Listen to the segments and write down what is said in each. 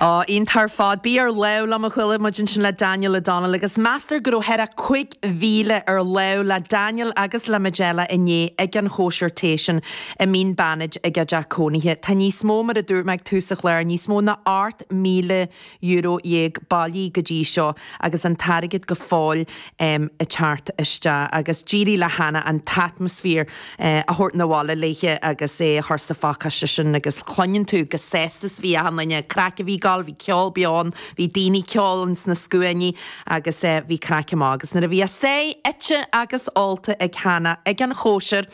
Á, iontach ar fad. Bí ar láimh liom a chuala muid ansin le Daniel O'Donnell agus meastar go raibh thar a 5,000 ar láimh le Daniel agus le Majella inné ag an chóisir tae sin i Mín Beannaid ag a dteach cónaithe. Tá níos mó, mar a dúirt mé ag tús an chláir, níos mó ná 8,000 euro dhéag bailithe go dtí seo agus an t-airgead go fóill ag teacht isteach. Agus d'éirigh le Hanna an t-atmaisféar a thabhairt 'na bhaile léithe agus é a chur sa phacáiste sin agus cluineann tú chomh sásta is a bhí achan duine. Craic a bhí ag gabháil, bhí ceol beo ann, bhí daoine ag ceol ins na scuainí agus bhí craic maith. Agus nuair a bhí a sáith ite agus ólta ag Hanna ag an chóisir,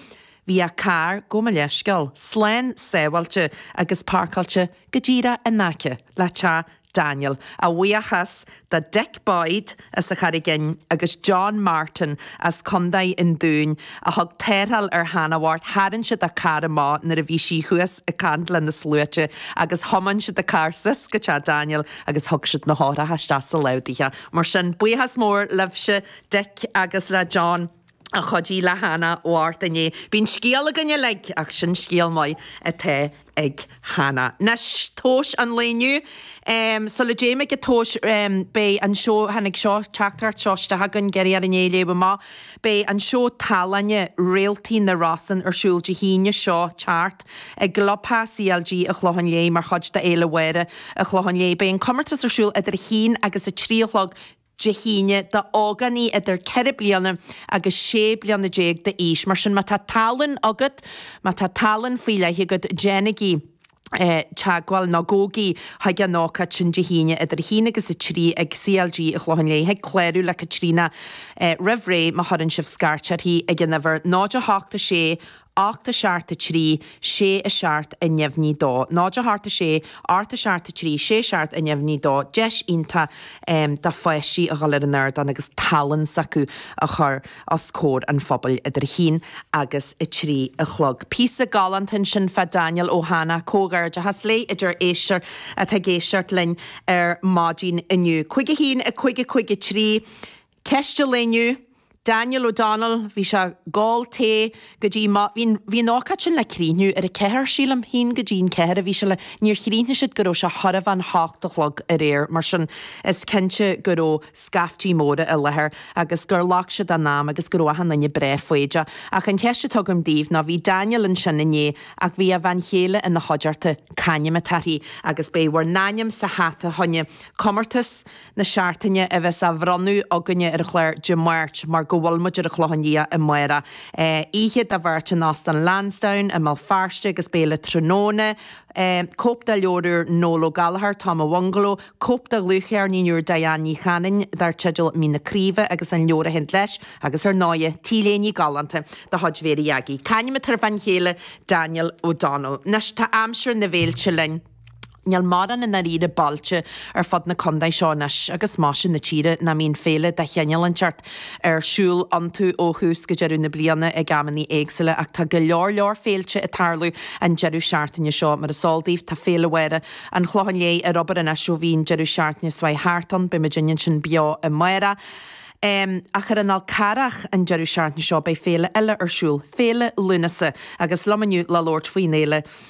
Bhí a carr gabh mo leithscéal slán sábháilte agus parcáilte go díreach in aice le teach Daniel, a bhuíochas do Dick Boyd as an Charraigín agus John Martin as Contae an Dúin a thug tarrtháil ar Hanna bhocht. Tharraing siad a carr amach nuair a bhí sí thuas ag caint le na sluaite agus thiomáin siad a carr suas go teach Daniel agus thug siad na heochracha isteach sa lámh daoithe. Mar sin, buíochas mór libhse, Dick agus le John. a chuidigh le Hanna bhocht inné. Bíonn scéal againn uilig, ach sin scéal maith atá ag Hanna. Anois, tomhas an lae inniu. Sula dtéim ag an tomhas, beidh an seó, tháinig seo, teachtaireacht seo isteach chugainn, iarradh orainn é a léamh amach, beidh an seó tallainne, Réaltaí na Rosann, ar siúl Dé hAoine seo ag teacht, i gClubtheach CLG an Chlocháin Léith, mar chuid de Fhéile Mháire an Chlocháin Léith. Beidh an comórtas ar siúl idir a haon agus a trí a chlog. Dé hAoine, do ógánaigh idir ceithre bliana agus sé bliana déag d'aois. Mar sin, má tá tallann agat, má tá tallann faoi leith agat, déanaigí teagmháil, nó gabhaigí chuig an ócáid sin Dé hAoine idir a haon agus a trí ag CLG an Chlocháin Léith, thig clárú le Caitríona roimh ré má chuireann sibh scairt uirthi ag an uimhir 08 6 Ocht a seacht a trí, sé a seacht a neamhní a dó. Náid a hocht a sé, ocht a seacht a trí, sé a seacht a neamhní a dó, deis iontach do pháistí a dhul ar an ardán agus tallann s'acu a chur os comhair an phobail idir a haon agus a trí a chlog. Píosa galánta ansin fá Daniel ó Hanna, comhghairdeachas léi a deir éisteoir atá ag éisteacht linn ar maidin inniu. Cúig a haon, a cúig, a cúig a trí. Ceist an lae inniu. Daniel O'Donnell, bhí sé ag ól tae go dtí mo, bhí an, bhí an ócáid sin le críochnú ar a ceathair, sílim, haon go dtí an ceathair a bhí sé le, níor chríochnaigh siad go raibh sé chóir a bheith an hocht a chlog aréir, mar sin is cinnte go raibh scaiftí móra i láthair agus gur ghlac siad a n-am agus go raibh achan duine breá foighdeach. Ach an cheist atá agam daoibh ná, bhí Daniel ansin inné ach bhí a bhean chéile ina chuideachta, c'ainm atá uirthi? Agus beidh bhur n-ainm sa hata fá choinne comórtas. na seachtaine a bheas á bhronnadh againne ar an chlár Dé Máirt mar go bhfuil muid ar an Chlochán Liath amárach. Oíche do bheirt in Óstán Lansdowne i mBéal Feirste agus béile tráthnóna. Cóip de leabhar úr Noel Ó Gallchóir, Tom an Bhungaló, cóip de dhlúthcheirnín úr Diane Ní Chanainn dar teideal Mín na Craoibhe agus an leabhar a théann leis agus ar ndóigh, t-léine galánta de chuid Mhary Aggie. C'ainm atá ar bhean chéile Daniel O'Donnell. Anois tá aimsir na bhféilte linn. Níl mórán i ndáiríre bailte ar fud na condae seo anois agus mar sin na tíre nach mbíonn féile de chineál inteacht ar siúl iontu ó thús go deireadh na bliana ag amannaí éagsúla ach tá go leor leor féilte ag tarlú an deireadh seachtaine seo. Mar is eol daoibh tá Féile Mháire an Chlocháin Léith ar obair anois ó bhí an deireadh seachtaine seo chuaigh thart ann. Beidh muidinne ansin beo amárach. Ach ar an Fhál Charrach an deireadh seachtaine seo beidh féile eile ar siúl, Féile Lúnasa agus liom inniu le labhairt faoin fhéile,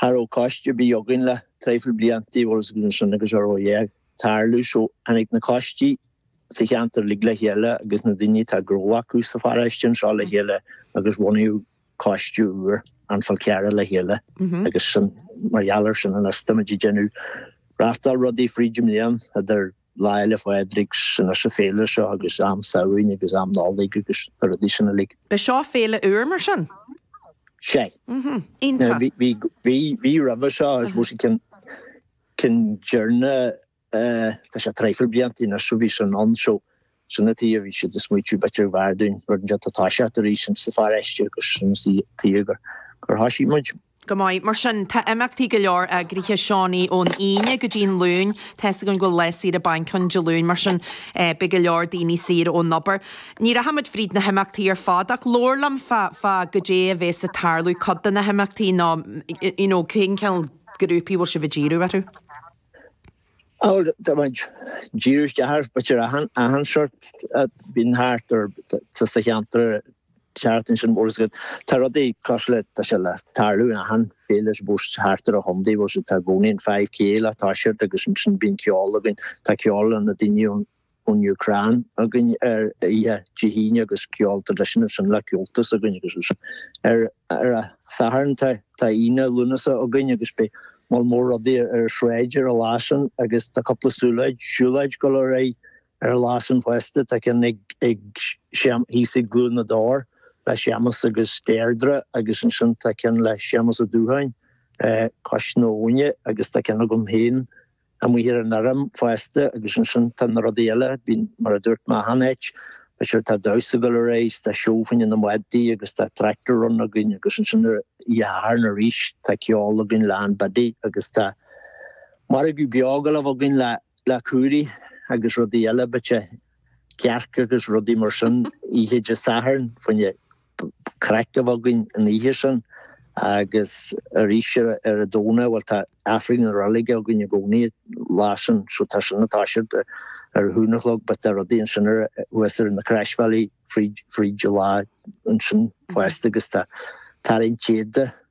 Cha raibh coiste ar bith againn le traidhfil blianta bhfuil 'fhios agat sin agus cha raibh a dhath ag tarlú so tháinig na coistí sa cheantar uilig le chéile agus na daoine atá gnó acu sa pharáiste anseo le chéile agus bhunaíodh coiste úr An Fál Carrach le chéile agus sin mar gheall ar sin anois tá muid ag déanamh reachtáil rudaí fríd an mbliain idir Lá Fhéile Phádraig agus an fhéile seo agus am Samhraidh agus am Nollaig agus na rudaí sin uilig. Ba seo féile úr mar sin? Sea. Iontach. Bhí roimhe seo I suppose ceann, ceann deireanach, tá sé traidhfil blianta anois ó bhí sin ann so, Sin a tuighe a bhí siad a smaoitiú b'fhéidir gurbh fhearr dúinn, rud inteacht a thoiseacht arís ins sa pharáiste agus sin a tuighe gur thoisigh muid. Go maith. Mar sin, tá imeachtaí go leor eagraithe, Seánaí, ón Aoine go dtí'n Luain. Tá 'fhios againn go bhfuil lá saoire bainc ann Dé Luain mar sin beidh go leor daoine saor ón obair. Ní rachaimid fríd na himeachtaí ar fad ach labhair liom fá, fá goidé a bhéas a' tarlú, cuid de na himeachtaí nó you know cén cineál grúpaí bhfuil sibh a' díriú orthu? Á bhuel, ag díriú isteach, b'fhéidir ar achan seort a bhíonn thart sa cheantar thart ansin, bhfuil 's agat, tá rudaí cosúil le, tá sé ag tarlú in achan féile a bíos thart ar a chontae, bhfuil 's agat, tá i gcónaí an 5K le toiseacht agus ansin bíonn ceol againn, tá ceol le na daoine ón ón Úcráin againn ar oíche Dé hAoine agus ceol tradisiúnta sin le Comhaltas againn agus is ar ar a Satharn tá tá Aonach Lúnasa againn agus beidh mol mór rudaí ar ar sráid ar a lá san agus tá cúpla siúláid siúláid go leor ag ar a lá san fosta tá ceann ag ag séam thíos ag Cluain na dTor le Séamas agus Deirdre agus ansin tá ceann le Séamas Ó Dúcháin eh cois na habhna agus tá ceann agam héin amuigh ar an fharraige fosta agus ansin tá na rudaí eile, bíonn, mar a dúirt mé, achan oíche, beidh tá damhsa go leor a's tá seó faoi na madaidh agus tá tractor run againn agus ansin ar oíche Shathairn arís tá ceol againn le Ann Biddy agus tá margadh beag a ghabháil a bheith againn le, le cúirí agus rudaí eile but yeah cearca agus rudaí mar sin oíche Dé Sathairn faoin a craic mhaith againn an oíche sin agus arís ar an Domhnach bhuel tá Aifreann na reilige againn i gcónaí lá sin so tá sin ag toiseacht ar a haon a chlog but tá rudaí ansin thuas ar na Croisbhealaí fríd fríd an lá ansin fosta agus tá tarraingt an téad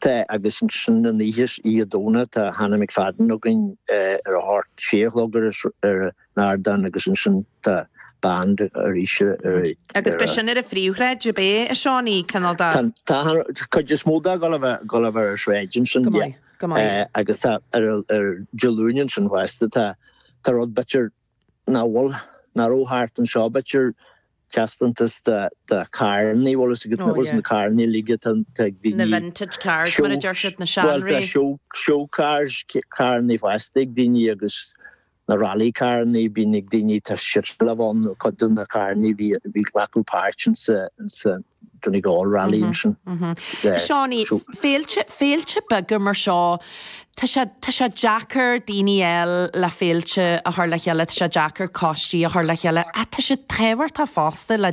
Tá, agus ansin oíche Dhomhnaigh, tá Hannah McFadden againn ar a hocht, sé a chlog ar an ardán agus ansin tá band arís ar a. Agus beidh sin ar an phríomhshráid, cibé a Seánaí, cineál de. Tá an chuid is mó dó ag gabháil a bheith ar an tsráid ansin. Go maith, go maith. Agus tá ar Dé Luain ansin fosta, tá rud b'fhéidir. Nach bhfuil, nach raibh thart anseo b'fhéidir taispeántas de carranna í bhfuil fhios agat, bhfuil fhios agat na carrannaí uilig atá ag daoine, na vintage cars mar a deir siad, na seanré, bhuel tá show, show cars, carrannaí fosta ag daoine agus na rally carrannaí a bíonn ag daoine tá siad ag gabháil a bheith ann, cuid de na carrannaí a bhí ag glacadh páirt ins an. Donegal rally ansin. Seánie, féilte, féilte beaga mar seo, tá sé, tá sé deacair daoine a fháil le féilte a chur le chéile, tá sé deacair coistí a chur le chéile, ach tá siad tábhachtach fosta le